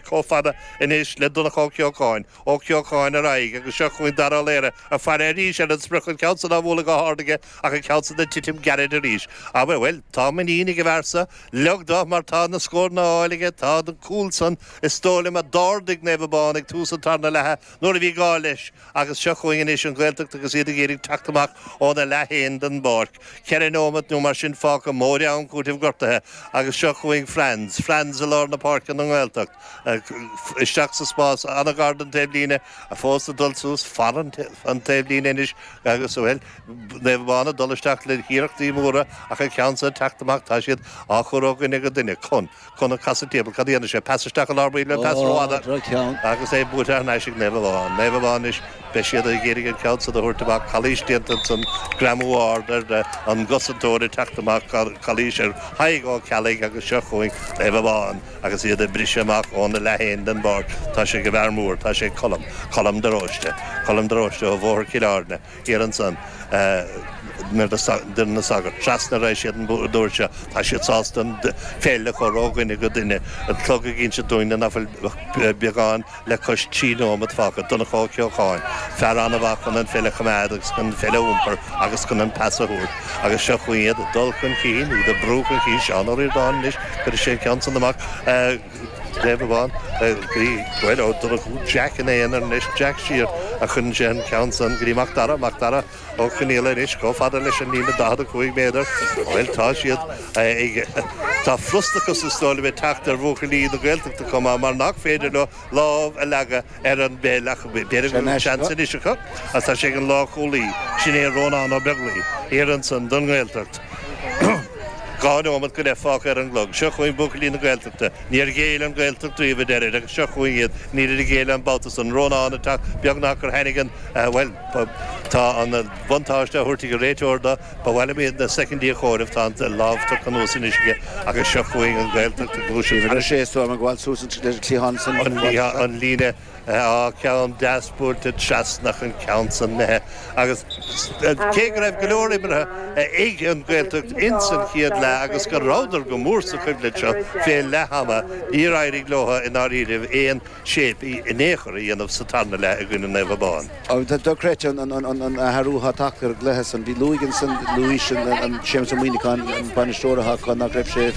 chomh fada anois le Donncha Ó Ceocháin, Ó Ceocháin ar aghaidh agus seo chugainn Dara Ó Laoire ag faire arís ar an sprioc, an ceann san á bhualadh go hard aige ach an ceann san ag titim geairid arís. Ach, bhuel, tá muinín ag an bhfear seo, Liam, mar tá na scóranna á fháil aige, tá an cúl san is dóigh liom a d'ardaigh Naomh Abán ag tús an tarna leatha nuair a bhí gá leis agus seo chugainn anois an Ghaeltacht agus iad ag iarraidh teacht amach óna leath féin den bpáirc. Ceithre nóimeat nó mar sin fágtha, móide am cúitimh gortaithe agus seo chugainn Franz. Franz i lár na páirce don nGaeltacht. Isteach sa spás, an-ghar don taobhlíne, fós ag dul suas, fan an taobhlíne anois agus, bhuel, Naomh Abán ag dul isteach le hiarrachtaí móra ach an ceann seo ag teacht amach, tá siad á chur ó dhuine go duine. Con. Conor ag casadh timpeall. Cad a dhéanfaidh sé? Pas isteach i lár baill nó pas rófhada agus é buailte thar n-ais ag Naomh Abán. Naomh Abán anois, beidh siad ag iarraidh an ceann san a thabhairt amach. Calaois déanta ansan. Greamú ard ar an gcosantóir ag teacht amach. Calaois ar Thadhg Ó Ceallaigh agus seo chugainn Naomh Abán agus iad ag briseadh amach óna leath féin den bpáirc. Tá sé ag an bhfear mór. Tá sé ag Colm. Colm de Róiste. Colm de Róiste ó Bhóthar Chill Airne. Siar ansan. Tigh na Sagart. Trasna arís iad an uair seo. Tá siad sásta an pheil a chur ó dhuine go duine. An clog ag inse dúinne nach bhfuil ach beagán le cois trí nóiméad fágtha. Donncha Ó Ceocháin, fear an-mhaith chun an pheil a choimeád agus chun an pheil a iompar agus chun an pas a thabhairt. Agus seo chugainn iad ag dul chun cinn, iad ag brú chun cinn. Seán Ó Ríordáin anois, cuirfidh sé an ceann san amach. Naomh Abán, bhí Coyle, Ó Donnchú, Jack ina aonar anois, Jack siar agus cuireann sé an ceann san go dtí Mac Dara, Mac Dara, Ó Conaola anois chomh fada leis an líne 45 méadar. Bhuel tá siad ag, tá frustrachas is dóigh liom ag teacht ar bhuachaillí na Gaeltachta chomh maith mar nach féidir leo lámh a leagadh ar an bpeil ach b'fhéidir go bhfuil seans anois acu ach tá sé ag an lá cúlaí sin é Rónán Ó Beaglaoi thiar ansan don nGaeltacht. Dhá neomat go leith fágtha ar an gclog. Seo chugainn buachaillí na Gaeltachta. Níor ghéill an Ghaeltacht riamh a deirtear agus seo chugainn iad níor ghéill an babhta san. Rónán ag teacht beagnach gur tháinig an bhuel tá an buntáiste á thabhairt ag an réiteoir do Ba mhaith liom iad na soicindí a chomhaireamh, tá an lámh tógtha anuas anois aige agus seo chugainn an Ghaeltacht ag gluaiseacht thar nais. An líne atá ceann deas buailte trasna ach an ceann san imithe agus cé go raibh go leor imeartha ag an nGaeltacht ins an chéad leath agus go rabhadar go mór sa choimhlint seo fé leath ama níor éirigh leotha i ndáiríribh aon shape in aon chor a dhéanamh sa tarna leath i gcoinne Naomh Abán. Dochreidte an athrú atá tagtha ar an gcluiche san. Bhí Lughaidh ansan, Luis, Séamus Ó Muíneacháin, an bainisteoir is trua nach raibh sé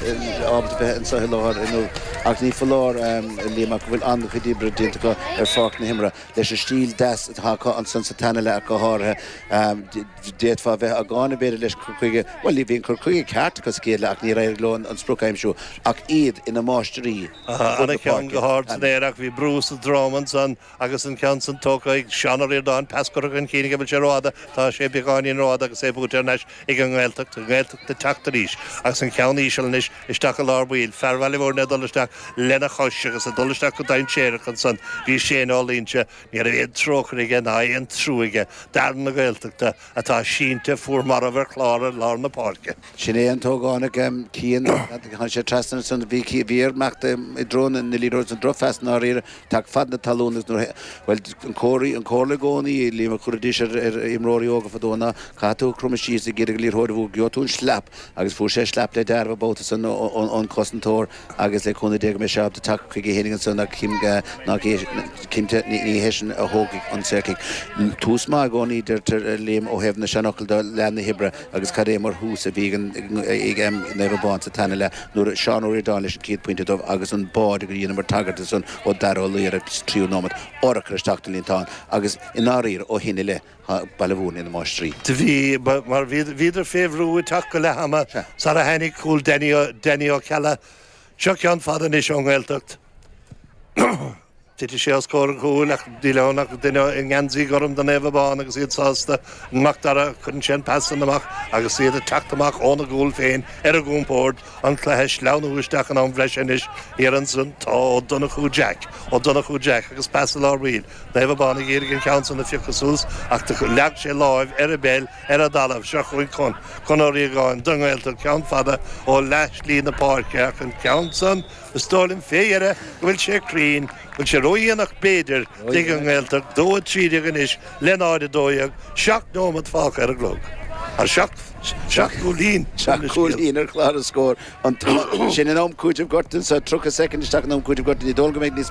ábalta bheith anso láithreach inniu ach ní foláir, a Liam, ach go bhfuil an-chuid oibre déanta acu ar pháirc na himeartha leis an stíl deas atá acu ansan sa tarna leath ach go háirithe. D'fhéadfá bheith á gcáineadh b'fhéidir leis cur chuige, bhuel bhí an cur chuige ceart acu sa gcéad leath ach níor éirigh leo an sprioc a aimsiú ach iad ina máistirí. Thar a cheann go hard san aer ach bhí brú sa drom ansan agus an ceann san tógtha ag Seán Ó Ríordáin, pas curtha chun cinn aige, an bhfuil sé rófhada? Tá sé beagáinín rófhada agus é buailte thar n-ais ag an nGaeltacht, an Ghaeltacht ag teacht arís agus an ceann íseal anois isteach i lár baill, fear Bhaile Mhúirne ag dul isteach lena chois agus ag dul isteach go dainséarach ansan, bhí Shane Ó Luínse, ní raibh aon trócaire aige ná aon trua aige d'fhear na Gaeltachta atá sínte fuar marbh ar chlár ar lár na páirce. Sin é an tógaint ag Cian. Chuaigh sé trasna ansan. Bhí Cian, bhí air imeacht i dtreo na liathróide san, drochphas i ndáiríre, cic fan na talún agus nuair a, bhuel, an comhartha, an comhairle i gcónaí a, bhímid ag cur arís ar imreoirí óga fadó ná caithfidh tú cromadh síos ag éirí go liathróid, bhuel, gheobhaidh tú an sleap agus fuair sé sleap le deáramh an babhta san ón cosantóir. agus le cúnamh Dé go mbeidh sé ábalta teacht chuige fhéin ansan ach cinnte ní hé sin a thógfaidh an saol. Tús maith i gcónaí deirtear Liam ó thaobh na seanfhocal de, leath na hoibre agus cad é mar thús a bhí ag Naomh Abán sa tarna leath nuair Seán Ó Ríordáin leis an chéad pointe dóibh agus an báide go dheineamair tagairt do san ó Dhara Ó Laoghaire sa tríú nóiméad sáite isteach sa líontán agus i ndáiríre ó shin i leith Baile Mhúirne na máistrí. Do bhí, mar bhíodar fé bhrú ag teacht go leath ama sar a tháinig cúl Danny Ó Ceallaigh. Seo ceann fada anois ón nGaeltacht. Titfidh sé os comhair an chúil ach níl ann ach duine i ngeansaí gorm do Naomh Abán agus iad sásta. An Mac Dara, cuireann sé an pas san amach agus iad ag teacht amach óna gcúl féin ar a gcompórd. An cluiche ag sleamhnú isteach in am bhreise anois. Éiríonn Ó Donnchú Jack, Ó Donnchú Jack agus pas i lár baill. Naomh Abán ag iarraidh an ceann san a phiocadh suas ach do leag sé láimh ar an ball ar an dtalamh. Seo chugainn Conn Ó Riagáin don nGaeltacht ceann fada ó leath slí na páirce ach an ceann san, is dóigh liom fé dheire go bhfuil sé cruinn. Bhfuil sé ródhéanach b'fhéidir? Ag an nGaeltacht 0 13 anois Naomh Abán 2, 12, 7 nóimeat fágtha ar an gclog. Tá seacht gcúilín ar an scéal. Cúilín ar chlár na scór. Sin in am cúiteamh gortuithe. Tá 30 soicind isteach in am cúiteamh gortuithe. Ní dóigh liom go mbeidh níos mó ná.